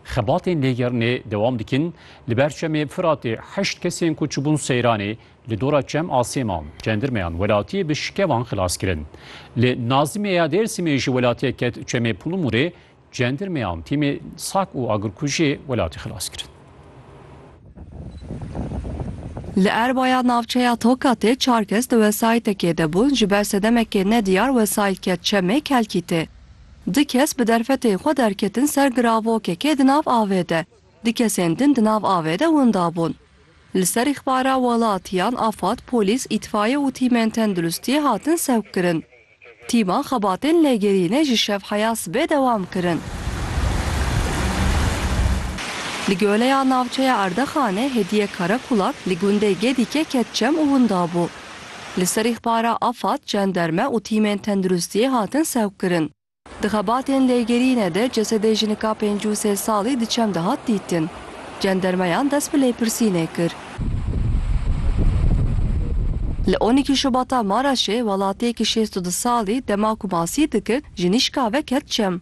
Xebatên lêgerinê dewam dikin, li ber Çemê Firatê heşt kesên ku çûbûn Seyranê li dora Çem a Sêman, cendirmeyan welatiyê bi şikevan xilas kirin. Li Nazimê ya Dêrsimê jî welatiyek ket Çemê Pulumurê, cendirmeyan tîmê sak û agirkujiyê welatî xilas kirin. Li Erbaya navçeya Tokatê çar kes di wesayîtekê de bûn, ji ber sedemekê nediyar wesayît ket Çemê Kelkîtê. Du kes bi derfetên xwe derketin ser giravokekê di nav avê de. Du kesên din di nav avê de winda bûn. Li ser îxbara welatiyan afad, polîs, îtfaiye û tîmên tenduristiyê hatin sevkkirin. Tîman xebatên lêgerînê ji şevheya sibê dewam kirin. Li Goleya Navçeya Erdexanê Hediye Karakulak li gundê Gedîkê ket çem û winda bû. Li ser îxbara Afad, cenderme û tîmên tenduristiyê hatin sevkkirin. Di xebatên lêgerînê de cesedê jinika pêncî û sê salî di çem de hat dîtin. Cendermeyan dest bi lêpirsînê kir. Li on îkî Şubata Maraşê welatiyekî şêst û du salî dema ku masî dikir ji nîşka ve ket çem.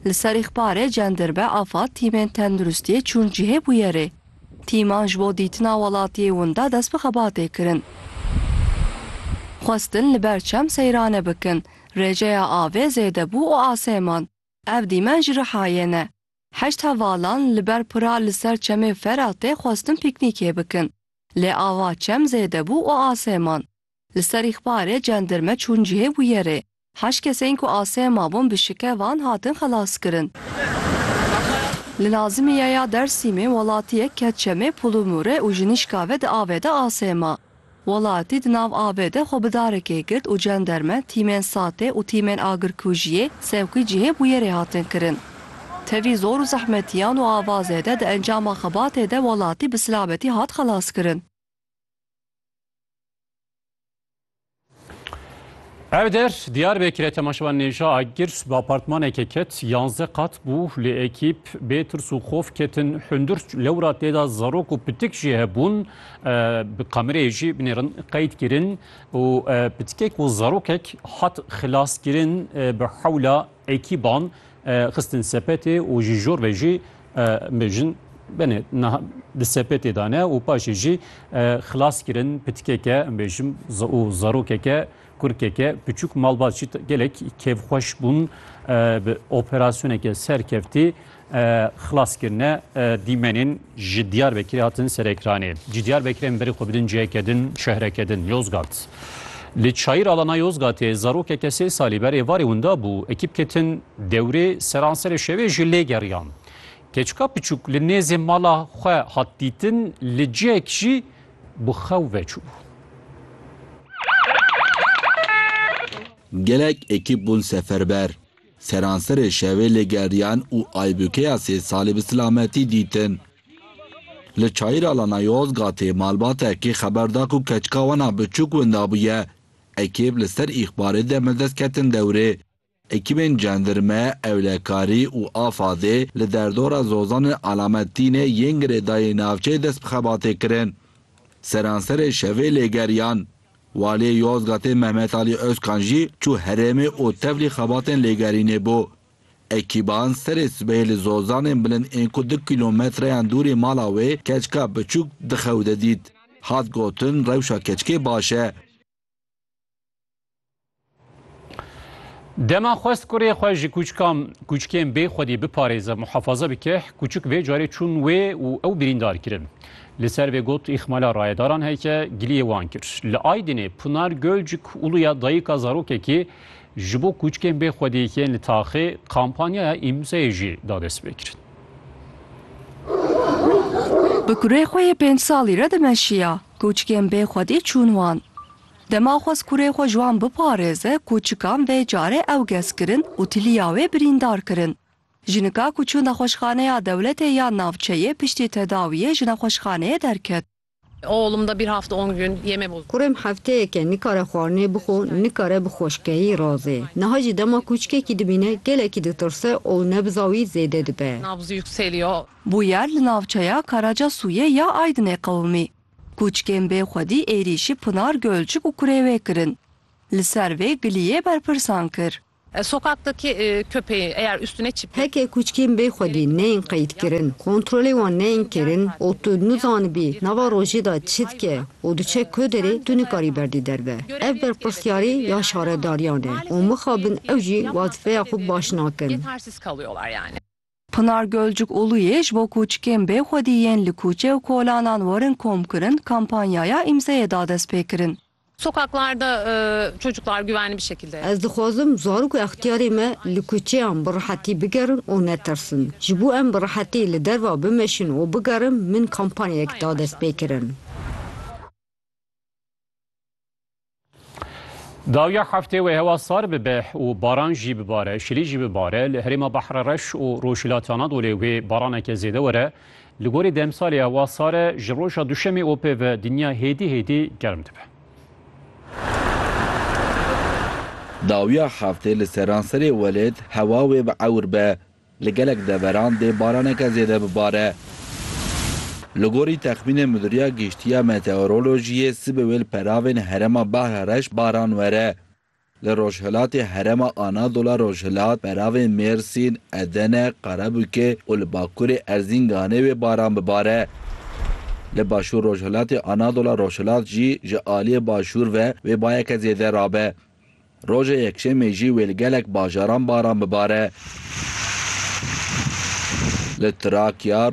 Li ser îxbarê cenderme Afad tîmên tenduristiyê çûn cihê bûyerê. Tîman ji bo dîtina welatiyê winda dest bi xebatê kirin. Xwestin li ber çem seyrane bikin. Rêjeya avê zêde bû û asê man. Ev dîmen ji Rihayê ne. Heşt hevalan li ber pira li ser çemê Feratê xwestin pîknîkê bikin. Lê ava çem zêde bû û asê man. Li ser îxbarê cendirme çûn cihê bûyerê. Heşt kesên ku asê mabûn bi şike van hatin xelaskirin. Li Nazimiye ya Dersîmê welatiyek ket çemê Pulumûrê û ji nişka ve di avê de asê ma. Welatî di nav avê de xwe bi darekê girt û cenderme, tîmên SATê û tîmên agirkujiyê sewqî cihê bûyerê hatin kirin. Tevî zor û zehmetiyan û avazê de di encama xebatê de welatî bi silabetî hat xelaskirin. Ev der Diyarbekir'e temaşevan nêja agir bi apartmanekê ket yanze qat bû lê ekîb bê tirs û xof ketin hundir lewra têda zarok û pitik jî hebûn bi kamereyê jî binêrin qeyd kirin û pitikek û zarokek hat xilaskirin bi hewla Ekîban xistin sepetê û ji jor ve jî bêjin benê niha di sepetê de ne û paşê jî xilas kirin pitkeke bêjim û zarokeke kurkeke piçûk malbat jî gelek kêfxweş bûn bi operasyoneke serkeftî Xilaskirine dîmenên ji Diyarbekirê hatin Serekranê. Cî Diyarbekirê em berê xwe bidin ciyeke din, şehreke din, Yozgat. Li çayîr alana Yozgatê zarokeke sê salî ber êvarê winda bû, ekîp ketin dewrê, seranserê şevê jî lê geriyan. Keçika piçûk li nêzê mala xwe hat dîtin, li cihek jî bi xew ve çûbû. Gelek ekîp bûn seferber. Seranserê şevê lê geriyan û Aybûkeya sê salî bi silametî dîtin. Li çayîra Lanayozgatê malbatekî xeber da ku keçika wan a biçûk winda bûye. Ekîb li ser îxbarê demildest ketin dewrê. Ekîbên cendirme, ewlekarî û Afadê li derdora Zozanê Alamettînê yên girêdayî navçeyê dest bi xebatê kirin. Seranserê şevê lê geriyan. Waliyê Yozgatê Mehmet Alî Ozkan jî çû herêmê û tevlî xebatên lêgerînê bû. Ekîban serê sibehê li zozanên bilind ên ku du kîlometreyan dûrî mala wê keçika biçûk di xew de dît. Hat gotin rewşa keçikê baş e. Dema xwest kurê xwe ji kûçikan kûçikên bê xwedî biparêze, muhafaza bike, kûçik vê carê çûn wê û ew birîndar kirin. Li ser vê got îxmala rayedaran heke giliyê wan kir. Li Aydinê Pinar Gölcük Uluya dayika zarokekî ji bo kûçikên bê xwedî yên li taxê kampanyaya îmzeyê jî da destpêkirin. Bi kurê xwe yê pênc salî re dimeşiya, kûçikên bê xwedî çûn wan. Dema xwest kurê xwe ji wan biparêze ku çikan vê carê ew gez kirin û tiliya wê birîndar kirin. Jinika ku çû nexweşxaneya dewletê yan navçeyê piştî tedawiyê ji nexweşxaneyê derket. Kurêm hefteyeke nikare xwarinê bixwe, nikare bi xweşkeyî razê. Niha jî dema kûçikekî dibîne gelekî ditirse û nebza wî zêde dibe. Bûyer li navçeya Karacasûyê ya Aydinê qewimî. Kûçkên bê xwedî êrîşî Pinar Gölcük û kurê wê kirin. Li ser vê Giliyê berpirsan kir. Sokaktaki köpeğin eğer üstüne çip. Heke kûçkên bê xwedî neyên qeydkirin, kontrolê wan neyên kirin û tu nizanibî nava rojê de çi dike û diçe ku derê tu nikarî berdî derve. Ev berpirsiyarî ya şaredariyan e û mixabin ew jî wezîfeya xwe baş nakin. Pinar Gölcük Uluyê ji bo kûçikên bêxwedî yên li kûçe û kolanan werin komkirin kampanyaya îmzeyê da destpêkirin. Sokaklarda çocuklar güvenli bir şekilde. Ez dixwazim zarok û extiyarê me li kuçeyan bi rihetî bigerin û netirsin. Ji bo em bi rihetî li derva bimeşin û bigerin min kampanyayek da destpêkirin. Dawiya heftê wê hewa sar bibe û baran jî bibare, şilî jî bibare. Li herêma Bahre Reş û Rojhilatê Anadolê wê baraneke zêde were. Li gorî demsalê hewa sar e, ji roja duşemê û pê ve dinya hêdî hêdî germ dibe. Dawiya heftê li seranserê welêt hewa wê bi ewr be Li gelek deveran dê baraneke zêde bibare. Li gorî texmînên Midûriya Giştî ya Meteorolojiyê sibê wê li peravên herêma Bahra Reş baran were. Li rojhilatê herêma Anadola Rojhilat, peravên Mêrsîn, Edene, Qarebûkê û li bakurê Erzînganê wê baran bibare. Li başûr rojhilatê Anadola Rojhilat jî ji aliyê başûr ve wê bayeke zêde rabe. Roja Yekşemê jî wê li gelek bajaran baran bibare. Li Trakya,